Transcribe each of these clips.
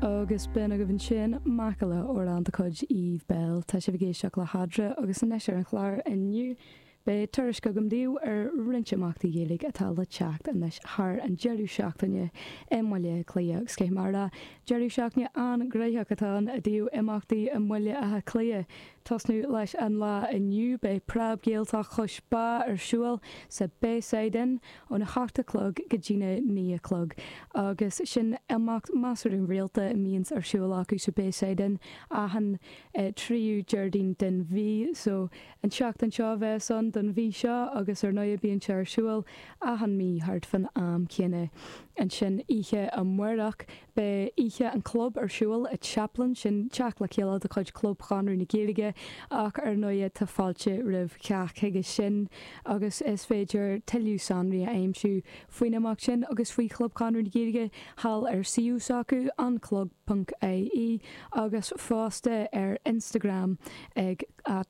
Agus b'in agaibh ansin Macalla amhrán de chuid Eve Belle. Tá sibh ag éisteacht le Hadra, agus anois ar an chlár inniu beidh tuairisc agam daoibh ar roinnt imeachtaí Gaeilge atá le teacht anois thar an deireadh seachtaine i mBaile Átha Cliath agus Cé mar a Deireadh seachtaine an-ghnóthach atá ann i dtaobh imeachtaí i mBaile Átha Cliath. tosnú leis an lá inniu beidh Preab-Ghaeltacht Chois Bá ar siúl sa Bayside Inn, óna hocht a chlog go dtína naoi a chlog, agus sin imeacht measartha rialta a mbíonns ar siúl acu sa Bayside Inn achan tríú Déardaoin den mhí. So, an tseachtain seo a bheas ann don mhí seo, agus ar ndóighe bíonn sé ar siúl achan mí thart fan am céanna. Ansin, oíche amáireach, Beidh oíche an club ar siúl i Chaplin, sin teacht le chéile de chuid Chlub Chonradh na Gaeilge, ach ar ndóigh tá fáilte roimh chách chuige sin agus is féidir tuilleadh sonraí a aimsiú faoin imeacht sin agus faoi Chlub Chonradh na Gaeilge thall ar suíomh s'acu, anclub.ie, agus fosta ar Instagram ag at.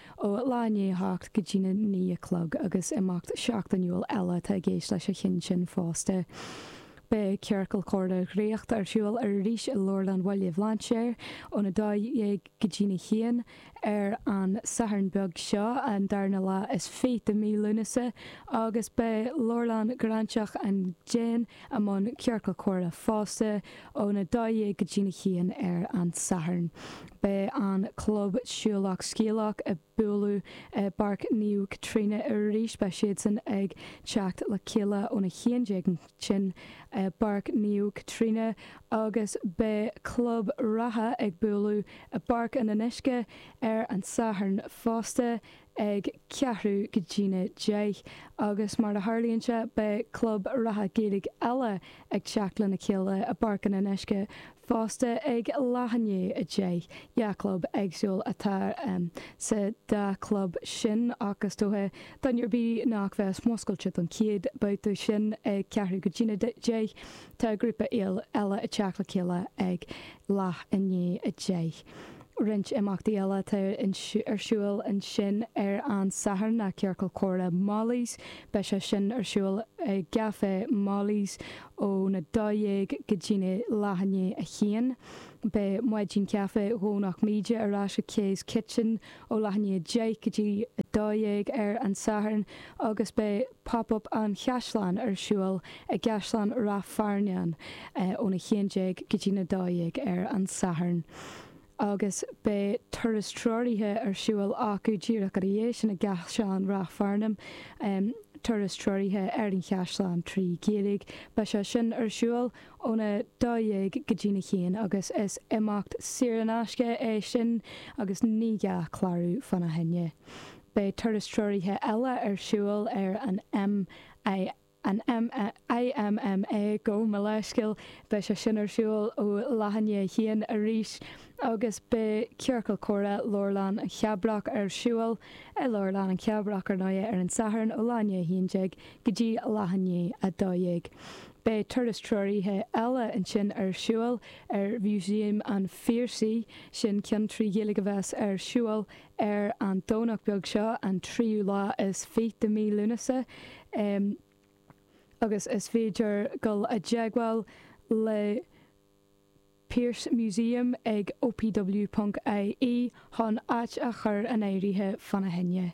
Ó leath i ndiaidh a hocht go dtína naoi a chlog, agus imeacht seachtainiúil eile atá i gceist leis an cheann sin fosta. Beidh Ciorcal Comhrá Dhraíocht ar siúl arís i Leabharlann Bhaile Bhlainséir ón 12 go dtína haon ar an Satharn beag seo, an darna lá is fiche de mhí Lúnasa, agus beidh Leabharlann Ghráinseach an Déin i mbun Ciorcal Comhrá fosta, Ón 12 go dtí'n 1 ar an Satharn, beidh an club Siúlach Scéalach ag bualadh i bPáirc Naomh Caitríona arís. Beidh siadsan ag teacht le chéile ón 11 ansin i bPáirc Naomh Caitríona agus beidh club reatha ag bualadh i bPáirc an Fhionnuisce ar an Satharn fosta. ag ceathrú go dtína deich, agus mar a tharlaíonn sé, beidh club reatha Gaeilge eile ag teacht lena chéile i bPáirc an Fhionnuisce fosta ag leath i ndiaidh a deich. Dhá chlub éagsúla atá sa dá chlub sin, ach is dócha, duine ar bith nach bheas muscailte don chéad babhta sin ag ceathrú go dtína deich, tá grúpa eile ag teacht le chéile ag leath i ndiaidh a deich. Roinnt imeachtaí eile atá ar siúl ansin ar an Satharn ná Ciorcal Comhrá Molly's. Beidh sé sin ar siúl i gCafé Molly's ó na 12 go dtí na leath i ndiaidh a haon. Beidh Maidin Caife Dhomhnach Míde ar ais ag Kay's Kitchen ó leath i ndiaidh 10 go dtí 12 ar an Satharn agus beidh Pop Up an Chaisleáin ar siúl i gCaisleán Ráth Fearnáin ón 11 go dtí na 12 ar an Satharn agus beidh turas treoraithe ar siúl acu díreach ina dhiaidh sin i gCaisleán Ráth Fearnáin, turas treoraithe ar an chaisleán trí Ghaeilge. Beidh sé sin ar siúl ón 12 go dtí na 1 agus is imeacht saor in aisce é sin agus ní gá clárú fána choinne. Beidh turas treoraithe eile ar siúl ar an IMMA gabh mo leithscéal, beidh sé sin ar siúl ó leath i ndiaidh a haon arís, agus beidh Ciorcal Comhrá Leabharlann an Chabrach ar siúl i Leabharlann an Chabrach ar ndóigh ar an Satharn ó leath i ndiaidh a haon déag go dtí leath i ndiaidh a dó dhéag. Beidh turas treoraithe eile ansin ar siúl ar Mhúsaem an Phiarsaigh, sin ceann trí Ghaeilge a bheas ar siúl Ar an Domhnach beag seo, an tríú lá is fíche de mí Lúnasa, agus is féidir dul i dteagmháil le Pearse Museum ag opw ponc ie chun áit a chur in áirithe fána choinne.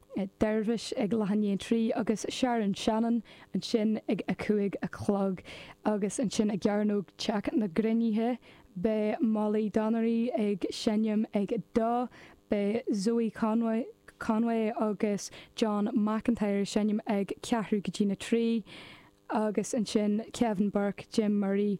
Dervish ag leath i ndiaidh a 3 agus Sharon Shannon ansin ag a cúig a chlog agus ansin i gCearnóg Teach na gCruinnithe beidh Molly Donnery ag seinm ag dó, beidh Zoë Conway agus John McIntyre ag seinm ag ceathrú go dtí na trí agus ansin Kevin Burke, Jim Murray,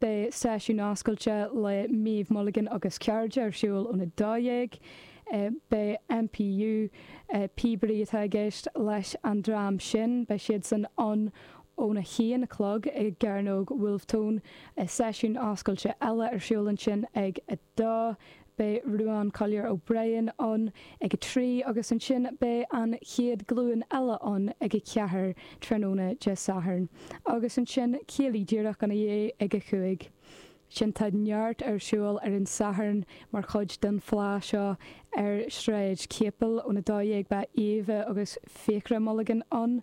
Beidh seisiún oscailte le Méabh Mulligan agus cairde ar siúl ón 12:00. Beidh NPU, píobairí atá i gceist, leis an dream sin. Beidh siadsan ann ón 1 a chlog i gCearnóg Wolfe Tone. Seisiún oscailte eile ar siúl ansin ag a. 2, Beidh Ruán Collier O'Brien ann ag a trí agus ansin beidh An Chéad Ghlúin Eile ann ag a ceathair tráthnóna Dé Sathairn agus ansin céilí díreach ina dhiaidh ag a cúig. Sin tá neart ar siúl ar an Satharn mar chuid den Fleá seo ar Shráid Chéipil ón 12:00 beidh Aoibhe agus Fiachra Mulligan ann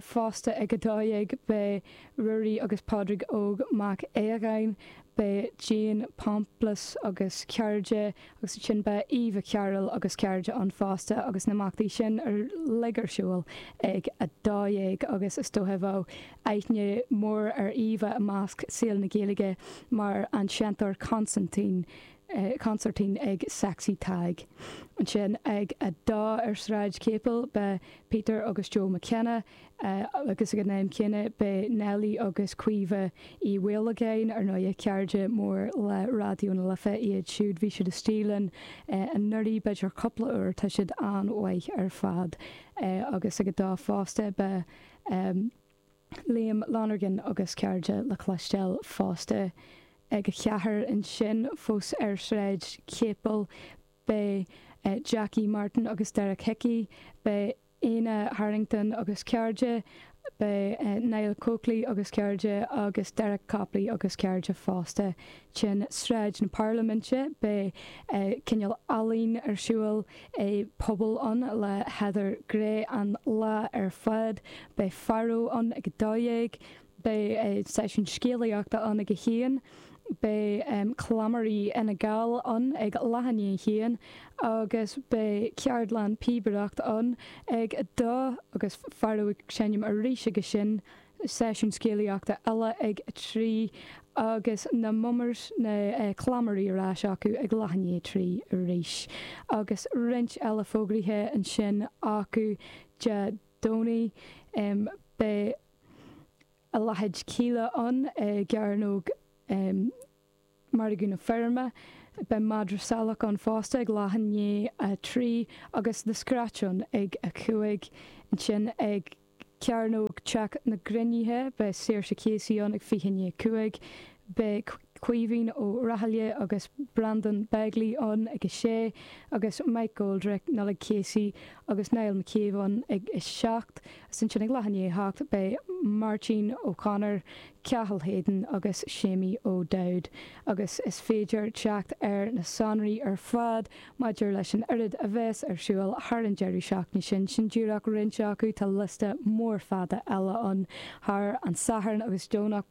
fosta ag 12:00 beidh Ruairí agus Pádraig Óg Mac Aodhagáin, Beidh Jean Pomplus agus cairde agus ansin beidh Eva Carroll agus cairde ann fosta agus na himeachtaí sin uilig ar siúl ag a dó dhéag agus is dóiche bheadh aithne mór ar Eva i measc saol na Gaeilge mar an seinnteoir consaintín, consairtín ag Sexy Tadhg. Ansin ag a dó ar Sráid Capel beidh Peter agus Joe McKenna. agus ag an am céanna beidh Nellie agus Caoimhe Ní Mhaolagáin, ar ndóigh, cairde mór le Raidió na Life iad siúd, bhí siad istigh linn anuraidh b'fhéidir cúpla uair, tá siad an-mhaith ar fad, agus ag a dó fosta beidh Liam Lonergan agus cairde le cloisteáil fosta, ag a ceathair ansin fós ar Shráid Chéipil beidh Jackie Martin agus Derek Hickey, beidh. Éanna Harrington agus cairde, beidh Niall Coakley agus cairde agus Derek Copley agus cairde fosta. Ansin Sráid na Parlaiminte, beidh cineál ealaín ar siúl i bpuball ann le Heather Gray an lá ar fad, beidh Varo ann ag a dó dhéag, Beidh seisiún scéalaíochta ann ag a haon, beidh cleamairí Fhine Gall ann ag leath i ndiaidh a haon agus beidh ceardlann píobaireacht ann ag a dó agus Varo ag seinm arís ag a sin, seisiún scéalaíochta eile ag a trí agus na mummers, na cleamairí, ar ais acu ag leath i ndiaidh a trí arís. Agus roinnt eile fógraithe ansin acu Dé Domhnaigh beidh. Louth Céilí ann i gcearnóg Margadh na Feirme, beidh Madra Salach ann fosta ag leath i ndiaidh a trí agus The Scratch ann ag a cúig. Ansin ag cearnóg Teach na gCruinnithe beidh Saoirse Casey ann ag fiche i ndiaidh a cúig. Beidh. Caoimhín Ó Raghallaigh agus Brendan Begley ann ag 6 agus Mike McGoldrick, Nollaig Casey agus Niall McCabe ann ag 7 agus ansin ag leath i ndiaidh a hocht beidh Máirtín O'Connor, Cathal Hayden agus Seamie O'Dowd agus is féidir teacht ar na sonraí ar fad maidir leis an oiread a bheas ar siúl thar an deireadh seachtaine sin, sin díreach roinnt acu, tá liosta mór fada eile ann thar an Satharn agus Domhnach.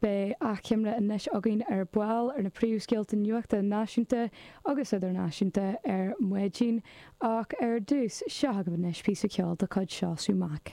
Beidh achoimre anois againn ar ball ar na príomhscéalta nuachta náisiúnta agus idirnáisiúnta ar maidin, ach ar dtús, seo agaibh anois píosa ceoil de chuid Seosamh Mac.